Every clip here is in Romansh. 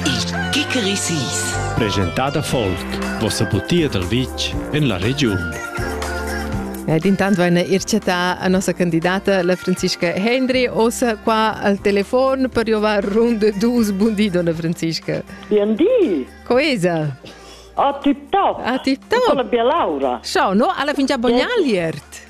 Il Kikerisis. Presentada folk. Vossa butia dal vitg en la regiun. Ed intant vain ir chattà a nossa candidata, la Franziska Hendry, ossa qua al telefon per jovar ronde dus. Buondì, donna Franziska. Buondì! Coesa! Ah, tip top! Ah, tip top! Con la bia laura! Ciao, no? Alla fingia bognaliert!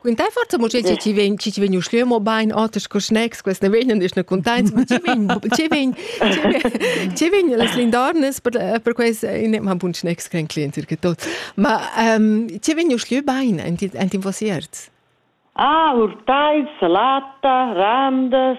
Quint hai fatto mo che ci vegn ci vegn uschlö mo bain oters co snacks quest ne vegnan is ne contents ma ci vegn ci vegn ci vegn las lindornes per per quest in ma bun snacks kein client ir tot ma ci vegn uschlö bain ent in vosiert Ah, urtai, salata, randas,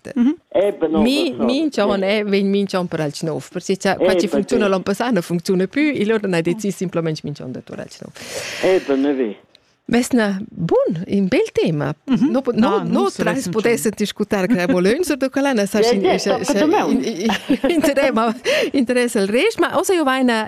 Mi minch'on è vegn minch'on per alch nov. Per se cha faci funcziuna l'on passà nu funcziuna plü, il on ha decis simplamaing minch'on da tur alch nov. Ebe ne ve. Mesna bun, in bel tema. No, no, no trais pudesset discutar che volönser da collana sa in interess al rеш, ma osa io vaina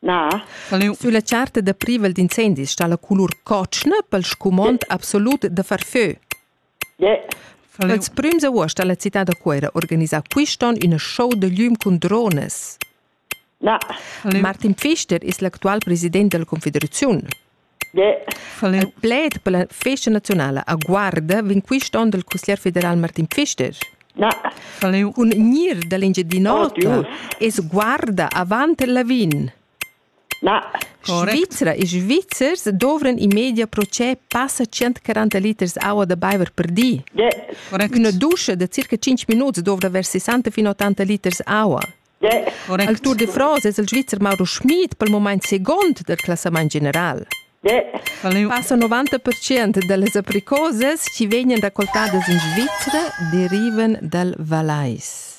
Na. Sülla charta da privel d'incendis sta la colur cotschna pel scumond absolut da far fö. Yeah. Ils prüms avuost ha la cità da Cuera organisà quist'on üna show da glüm cun drones. Na. Martin Pfister es l'actual president della Confederaziun. Von il pled per la festa nazionala a Guarda vegn quist on dal cusglier federal Martin Pfister. Na. Un gnir da l'Engiadin'Ota es Guarda avant il Lavin. Na. Svizra e Svizzers dovran in media procè passa 140 liters aua da baiver per di. Correct. Üna duscha da circa 5 minuts dovra vers 60 fin 80 liters aua. Al Tour de France es il Svizzer Mauro Schmid pel mumaint seguond del classamaint general. Passa 90% da las apricosas chi vegnan racoltadas in Svizra derivan dal Valais.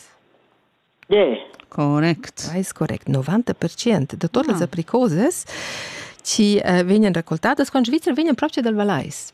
Correct. Valais correct. 90% da todas ah. las apricosas chi eh, vegnan racoltadas con Svizra vegnan proprio dal Valais.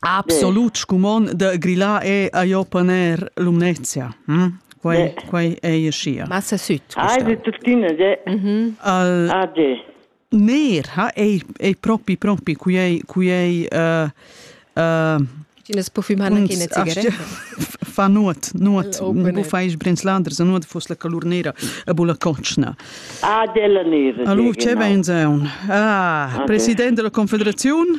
Absolut scumond da grillar è a jo paner Lumnezia. Hm? Quai, quai è aschia. Massa süd. Ai, de tuttina, de. Mhm. Al... Ah, de. Ner ha ei, ei propi, propi, cui ei, cui ei uh, uh, Ines po fumar nach eine Zigarette. Fa nuot, nuot. Bu fais brenslanders, nuot fus la calurnera a bula cocna. Ah, della neve. Allora, che venzeun? Ah, presidente della Confederazione?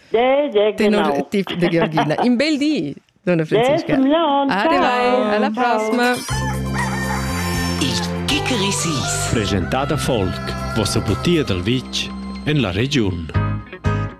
Tenor tip da Georgina. In bel di, donna Franziska. Arrivai, alla prossima. Il Kickerisis. Presentata Folk, vossa butia dal vitg en la regiun.